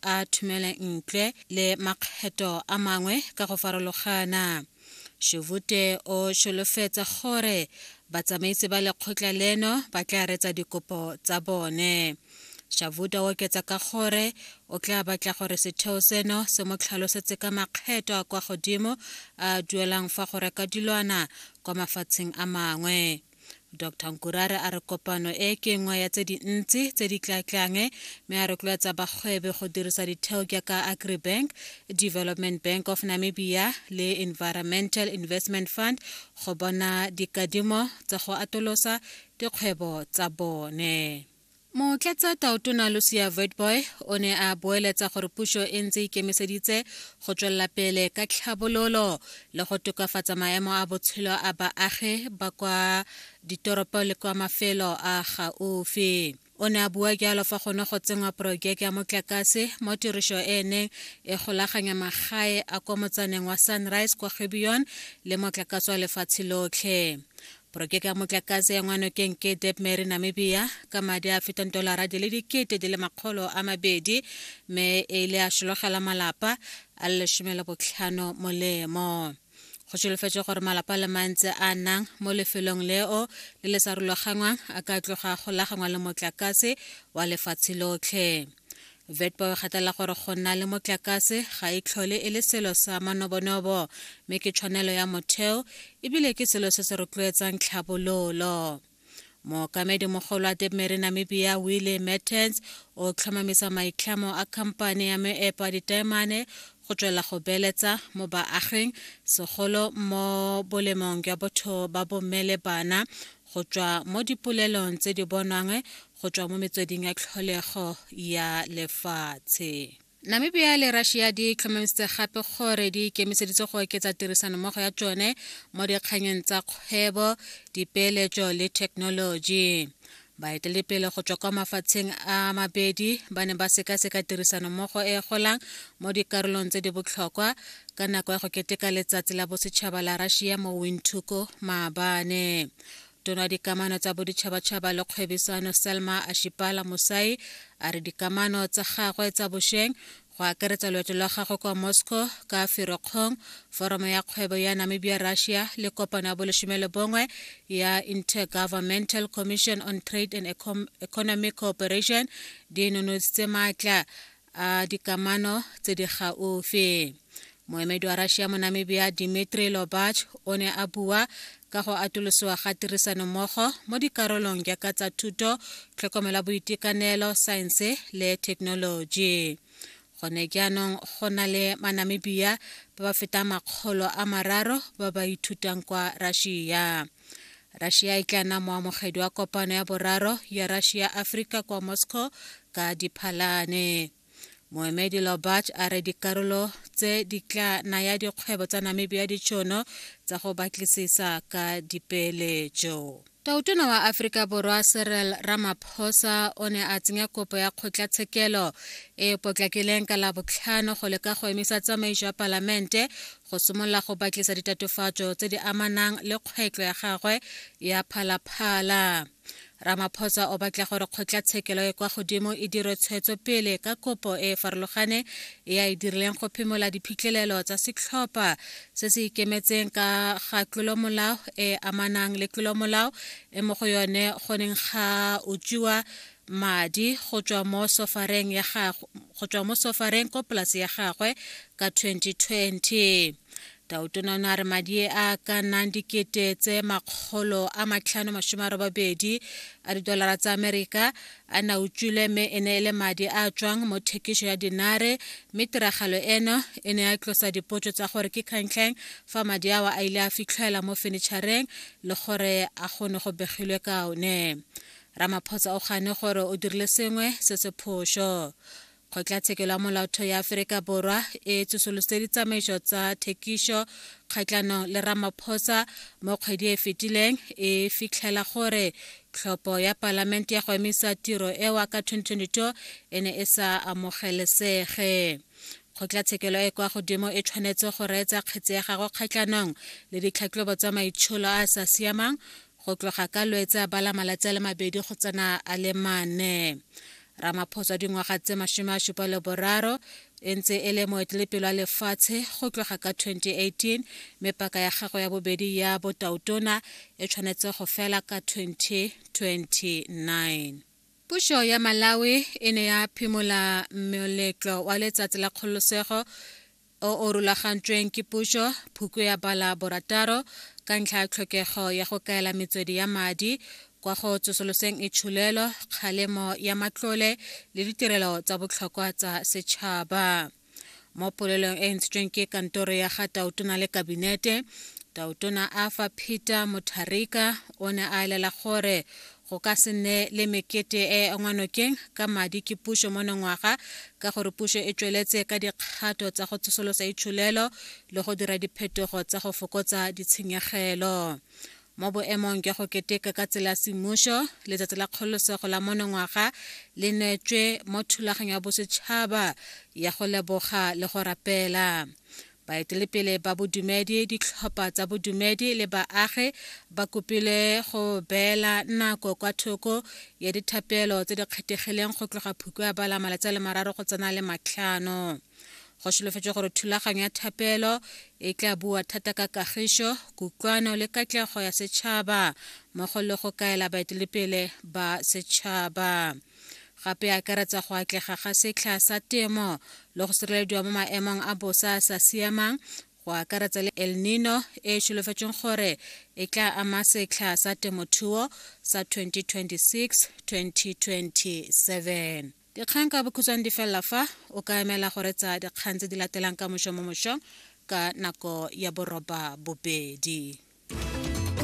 a thumele ntle le makgetho a mangwe ka go farologana Shuvute o sholofetsa gore batsamaisi ba lekgotla leno ba tla retsa dikopo tsa bone Shavuta o oketsa ka gore o tla batla gore setheo seno se mo tlhalosetse ka makgetho a kwa godimo a duelang fa go reka dilwana kwa mafatsheng a mangwe Dr Nkurare a re kopano e ke nngwe ya tse dintsi tse di tlatlang mme a rotloetsa bagwebe go dirisa ditheo jaaka agribank development bank of namibia le environmental investment fund go bona dikadimo tsa go atolosa dikgwebo tsa bone Motlatsa Taotona Lucia Witbooi o ne a boeletsa gore puso e ntse e ikemiseditse go tswelela pele ka tlhabololo le go tokafatsa maemo a botshelo a baagi ba kwa ditoropo le kwa mafelo a gaufi. O ne a bua jalo fa gone go tsenngwa porojeke ya motlakase mo tiriso e e neng e golaganya magae a kwa motsaneng wa Sunrise kwa Gibeon le motlakase wa lefatshe lotlhe. Porojeke ya motlakase ya ngwanokeng ke Debmary Namibia ka madi a fetang dolara di le dikete di le makgolo a mabedi mme e ile a šologela malapa a le lesome le botlhano molemo go solofetswe gore malapa le mantse a nang mo lefelong leo le le sa rulagangwang a ka tloga go lagangwa le motlakase wa lefatshe lotlhe vetpo e gatela gore go nna le motlakase ga e tlhole e le selo sa manobonobo mme ke tshwanelo ya motheo ebile ke selo se se rotloetsang tlhabololo mookamedi mogolo wa debmary namibia willie mertens o tlhomamisa maitlhamo a khamphane ya meepo a ditaemane go tswela go beeletsa mo baaging segolo mo bolemong jwa botho ba bomme le bana go tswa mo dipolelong tse di bonwang go tswa mo metsweding ya tlholego ya lefatshe namibia le russia di tlhomamisitse gape gore di ikemiseditse go oketsa tirisanommogo ya tsone mo dikganyeng tsa kgwebo dipeeletso le thekenoloji baeteledipele go tswa kwa mafatsheng a mabedi ba ne ba sekaseka tirisanommogo e golang mo dikarolong tse di botlhokwa ka nako ya go keteka letsatsi la bosetšhaba la russia mo windhoek maabane tona dikamano tsa boditšhabatšhaba le kgwebisano selma ashipala mosai a re dikamano tsa gagwe tsa bošweng go akaretsa loeto lwa gagwe kwa moscow ka ferokgong foromo ya kgwebo ya namibia russia le kopano ya boleshome le bongwe ya intergovernmental commission on trade and economic cooperation di nonontshitse maatla a dikamano tse di gaufi moemedi wa russia mo namibia dimitri lobach o ne a bua ka go atolosiwa ga tirisanommogo mo dikarolong jaaka tsa thuto tlhokomela boitekanelo saense le thekenoloji gone jaanong go na le manamibia ba ba fetang makgolo a mararo ba ba ithutang kwa russia Russia e tla nna moamogedi wa kopano ya boraro ya Russia Africa kwa Moscow ka Diphalane. Moemedi Lobach a re dikarolo tse di tla naya dikgwebo tsa Namibia ditšhono tsa go batlisisa ka dipeeletso. Tautona wa Aforika Borwa Cyril Ramaphosa o ne a tsenya kopo ya kgotlatshekelo e potlakileng ka labotlhano go leka go emisa tsamaiso ya palamente go simolola go batlisa ditatofatso tse di amanang le kgwetlo ya gagwe ya phalaphala ramaphosa o batla gore kgotlatshekelo e kwa godimo e dire tshwetso pele ka kopo e e farologane e a e dirileng go phimola diphitlhelelo tsa setlhopha se se ikemetseng ka ga tlolomolao e amanang le tlolomolao e mo go yone go neng ga utswiwa madi go tswa mo sofareng ya gagwe go tswa mo sofareng ko polase ya gagwe ka 2020 tautona o ne a re madi a ka nnang dikete tse makgolo a matlhano masome a robabedi a didolara tsa amerika a na utswile mme e ne e le madi a tswang mo thekiso ya dinare mme tiragalo eno e ne ya tlosa dipotso tsa gore ke kgantlheng fa madi awa a ile a fitlhela mo fenitšhareng le gore a gone go begilwe ka one Ramaphosa o gane gore o dirile sengwe se se phoso. Kgotlatshekelo ya Molaotho ya Aforika Borwa e tsosolositse ditsamaiso tsa thekiso kgatlhanong le Ramaphosa mo kgwedi e fetileng e fitlhela gore tlhopho ya palamente ya go emisa tiro ewa ka 2022 e ne e sa amogelesege. Kgotlatshekelo e kwa godimo e tshwanetse go reetsa kgetse ya gagwe kgatlhanong le ditlhatlhobo tsa maitsholo a a sa siamang go tloga ka lwetsa ba la malatsi a le mabedi go tsena a le mane ramaphosa dingwaga tse masome a supa le boraro e ntse e le moetelepelo wa lefatshe go tloga ka 2018 mme paka ya gago ya bobedi ya botautona e tshwanetse go fela ka 2029 pušo ya malawi e ne ya phimola moletlo wa letsatsi la kgololosego o o rulagantsweng ke puso, Phukwe ya bala borataro ka ntlha ya tlhokego ya go kaela metswedi ya madi kwa go tsosoloseng itsholelo, kgalemo ya matlole le ditirelo tsa botlhokwa tsa setšhaba. Mo polelong e e ntshitsweng ke kantoro ya ga Tautona le Kabinete, Tautona Arthur Peter Mutharika o ne a elela gore go ka se nne le mekete e ngwanokeng ka madi ke puso monongwaga ka gore puso e tsweletse ka dikgato tsa go tsosolosa itsholelo le go dira diphetogo tsa go fokotsa ditshenyegelo mo boemong jwa go keteka ka tsela semmuso letsatsi la kgololosego la monongwaga le neetswe mo thulaganyo ya bosetšhaba ya go leboga le go rapela Baetelepele ba bodumedi, ditlhopha tsa bodumedi le baagi ba kopilwe go beela nako kwa thoko ya dithapelo tse di kgethegileng go tloga phuko ya bala malatsi a le mararo go tsena le matlhano. Go solofetswe gore thulaganyo ya thapelo e tla bua thata ka kagišo, kutlwano le katlego ya setšhaba mmogo le go kaela baetelepele ba setšhaba. gape e akaretsa go atlega ga setlha sa temo le go sirelediwa mo maemong a bosa a sa siamang go akaretsa le el nino e e solofetsweng gore e tla ama setlha sa temothuo sa 2026-2027 dikgang ka bokhutshwane di felela fa o ka emela go retsa dikgang tse di latelang ka mošo mo mošong ka nako ya boroba bobedi